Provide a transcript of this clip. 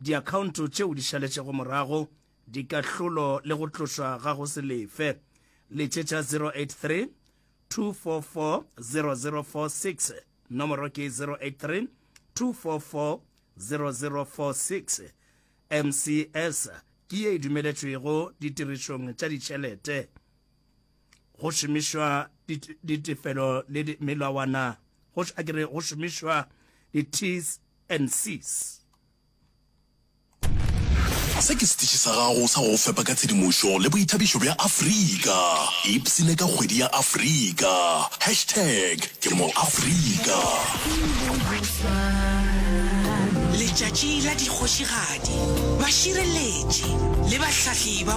diakhaonto tšeo di šaletšego morago, dikahlolo le go tlošwa ga go se lefe, le tše tša 083-244-0046, nomoro ke 083-244-0046. MCS ke ye e dumeletšwego ditirišong tša ditšhelete. go šomišwa ditefelo le melawana go a kere go šomišwa di-ts and cs se ke setiši sa gago sa go fepa ka tshedimošo le boithabišo bja afrika ipsene ka kgwedi ya afrika hashtag ke moafrika letšatši la dikgošigadi bašireletši le bahlahli ba